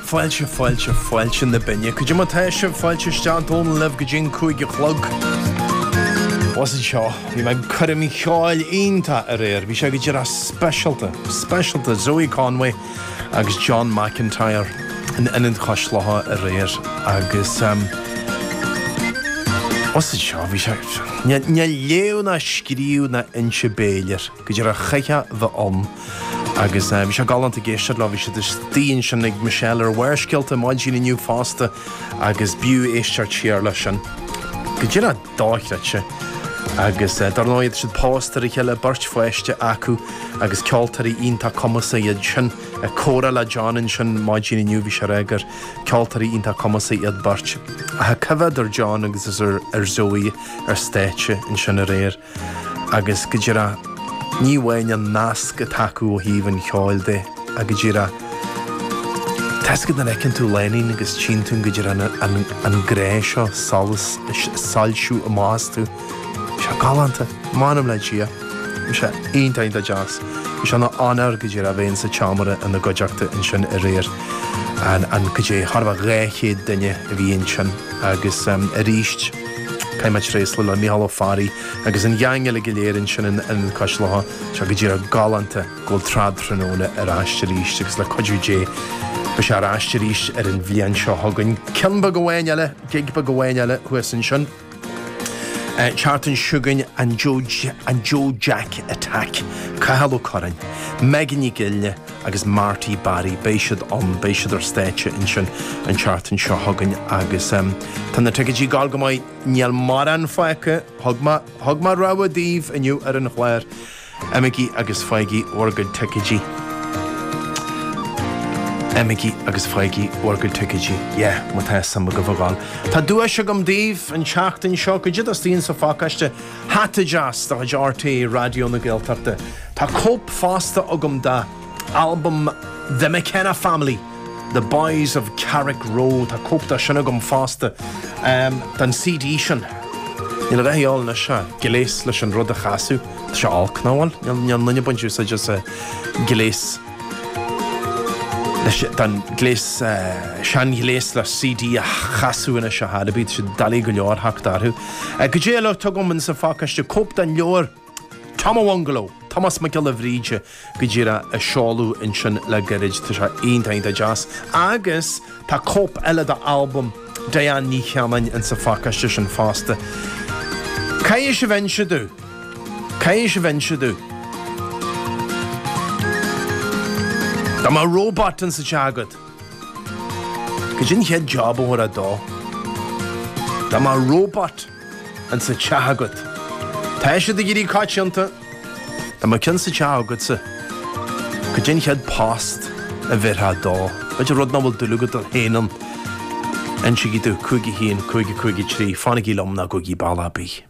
Fáilte, fáilte, fáilte na Binne. Goidé mar tá sibh, fáilte isteach Áine libh go dtí an cúig a chlog. Blas anseo. Bhí mé ag coirm cheoil iontach aréir. Bhí sé go díreach speisialta, speisialta. Zoe Conway agus John McIntyre in Ionad Cois Locha aréir agus ehm blas anseo. Bhí sé, níl léamh ná scríobh ná inse béil air, go díreach chaithfeá bheith ann. Agus bhí sé galánta ag éisteacht leo, bhí siad istigh ansin ag Michelle ar Bharrscéalta maidin inniu fosta agus b'fhiú éisteacht siar leis sin. Go díreach dochreidte. Agus dar ndóigh tá siad pósta ar a chéile, beirt pháiste acu agus ceoltóirí iontach cumasacha iad sin. Ag comhrá le John ansin maidin inniu bhí sé ag rá gur ceoltóirí iontach cumasacha iad beirt. Ach ag coimhéad ar John agus ar Zoe ar stáitse ansin aréir. agus go díreach ní amháin an nasc atá acu ó thaobh an cheoil de ach go díreach tá a fhios agat nuair a fheiceann tú lánúin agus tchíonn tú go díreach an grá seo, ag soilsiú amach astu. Bhí sé galánta, m'anam le Dia. Bhí sé iontach iontach deas. Bhí sé ina onóir go díreach a bheith insa tseomra ina gcuideachta ansin aréir and, goidé, thart fá 200 duine a bhí ansin agus aríst, Caithfidh mé tréaslú le Micheál Ó Fearraigh agus an gheaing uilig go léir ansin in Ionad Cois Locha. Tá sé go díreach galánta go bhfuil trad tráthnóna ar ais arís agus le cuidiú Dé beidh sé ar ais arís ar an bhliain seo chugainn. Ceann beag amháin eile, gig beag amháin eile thuas ansin. an tseachtain seo chugainn, an Joe Jack Attack, Cathal Ó Curráin, Megan Nic Fhionnghaile, agus Marty Barry, beidh siad ann, beidh siad ar stáitse ansin an tseachtain seo chugainn agus tá na ticeidí ag dul go maith, níl mórán fágtha, thug mé, thug mé rabhadh daoibh inniu ar an chlár, imigí agus fáigí bhur gcuid ticeidí, imigí agus fáigí bhur gcuid ticeidí, yeah, má tá suim agaibh a dhul. Tá duais agam daoibh an tseachtain seo, goidé atá istigh insa phacáiste. Hata deas de chuid RTÉ Raidió na Gaeltachta. Tá cóip fosta agam de albam The McKenna Family, The Boys of Carrickroe. Tá cóip dá sin agam fosta, den CD sin. Níl a dhath a dhíobháil anois ach gléas leis an rud a chasadh. Tá sé olc, nach bhfuil? Níl, níl aon duine ag baint úsáid as a, gléas. Anois, tá an gléas, seanghléas le CD a chasadh anois, sa charr, bíonn siad doiligh go leor theacht orthu. Goidé eile atá agam in sa phacáiste cóip den leabhar Tom a Bhungalow, Tomás Mac Giolla Bhríde, go díreach, a seoladh ansin le gairid. Tá sé iontach, iontach deas. Agus tá cóip eile d'albam Diane Ní Chanainn in sa phacáiste sin fosta. Caithfidh sibh inse domh. Caidé mar a bhíonns sibh inniu. Dá mbeadh robot in sa teach agat, cad é an chéad job a thabharfá dó? Dá mbeadh robot in sa teach agat. Tá siad ag éirí coitianta. Dá mbeadh ceann sa teach agatsa, cad é an chéad post a bheirfeá dó? B'fhéidir rud nach bhfuil dúil agat féin ann. Insígí domh, cúig a haon, cúig a cúig a trí, fanaigí liom, ná gabhaigí bealach ar bith.